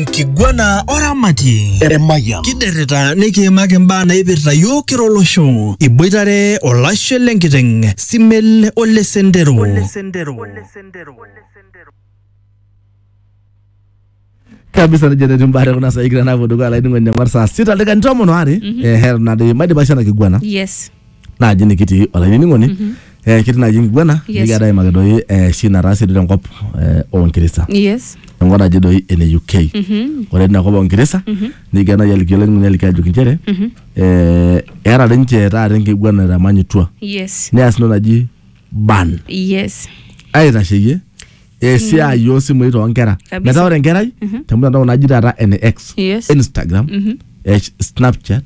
enkiguana oramatie Emayian. kiderrita nikiimaki imbaa naipirta yiok kira olosho iboitare olashe lenkiteng simel ole sendero kabisa nejo tetii mbaare kuna saai kira naapuo dukuya laining'oni eng'or saa sita dakikani tomon oare ehe nadoyio maidipa sho ena kiguana yes naaji nikitii olainining'oni mm -hmm. eh, ketii naaji enkiguana Yes. nikigira aimaki doi eh, shi nataase doi tenkop eh, oonkirisa yes enkop naji doi ene uk Mhm. ore tina kop oonkirisa nikigira naaji aliki olainining'oni aliki ajoki inchere eh, eeta doi ninche taata enkiguana etamanyutua yes neas entoki naji ban yes aitasheyie esiai oosimui toonkera Kabisa. metaa ore enkerai temtandao naji taata ene x Yes. instagram eh, snapchat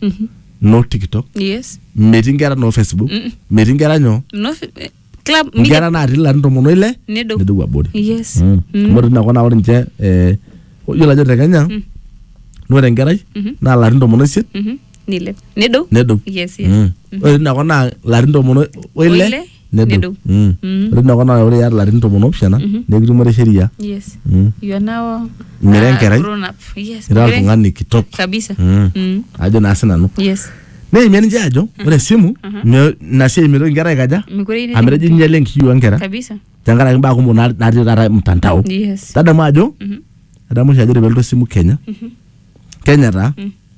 no tiktok yes metii nkera no facebook metii nkera nyoo no eh, club media nkera natii larin tomon oile nedou nedou abori yes Mm. amu ore tinakop naa ore ninche eh, yiolo ajo te kenya na ore enkerai naa larin tomon oisiet nilep nedou nedou yes yes Mm. ore tina kop naa larin tomon o- oile Oile, nedou nedou. Mm. Mm. ore tina kop naa ore iata larin tomon opishana nikitumore sheria yes Mm. you are now Mira uh, enkerai. grown up yes ira mira- oltung'ani kitok kabisa Mm. Mm. ajo naa sinanu yes neimie ninche ajo ore esimu me- ina siai mitoki inkera aikaja mikure ine- amu etejo inyale enkishui onkera kabisa tenkaraki mbaa kumok na- natii taata mtandao yes tadamu ajo Mhm. adamu oshi ajo ore pelotu esimu kenya kenya taa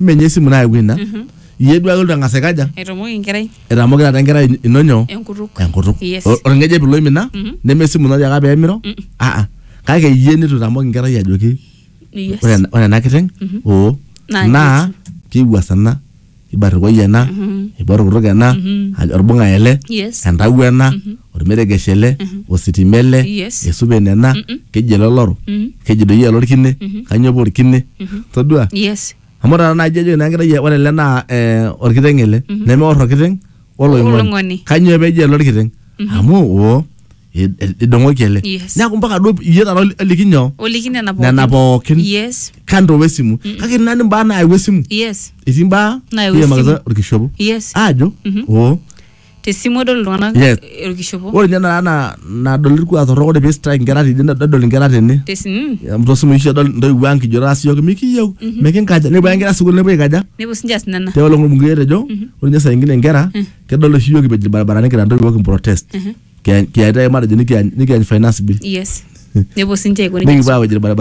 menye esimu nayawua ina Mhm. iyie duake olotu ang'as aikaja Etomoki enkerai etamoki taata enkerai in- ino nyoo enkutuk. enkutuk Yes. O- orng'ejep ilo imina Mhm. neme esimu ino tiaka peemiro Mm. aa kake iyie nitu itamoki enkerai ajoki Yes. ore ena- ore ena kiteng Mhm. oo Naa naa kiwuasana ibarrikoi ena Mhm. ibarrukutuk ena Mhm. ajo orbung'a ele Yes. entawuo ena Mhm. ormeregesh ele ositima ele Yes. esupe nena keji ele oloro keji doi ele orkine kanyoo paa orkine todua yes amu taata naaji ejo ina kerai ore ele naa eh, orkiteng ele nemeor orkiteng Oloing'oni. oloing'oni kanyoo peji ele orkiteng amu oo i- i- idong'oki ele Yes. neeku mpaka duo iyie taata oli- oliki nyoo oliki nena pookin nena pookin yes kando wesimu kake nani mbaa naayau esimu yes etii mbaa Naayau nikimakita esimu. orkishopo yes aajo oo te simu edol iltung'anak Yes. orkishopo ore ninye nara na- nadol irkuak torrok ore pee strike inkera tene nedol inkera tene te simu Amu tosimui oshi edol intoiwuo ang kijo taasi yiok mikiyieu mikinkaja nepuo ake inkera sukuul nepuo aikaja nepuo sinche aas nena tiaolo ng'olmungei etejo ore ninye saa ingine inkera kedol oshi yiok kipej irbaribarani kira intoiwuo kimprotest kiyaitae matejo nikiany nikiany finance bill yes nepuo sinche aiko nejia nikipuo awej irbaribarani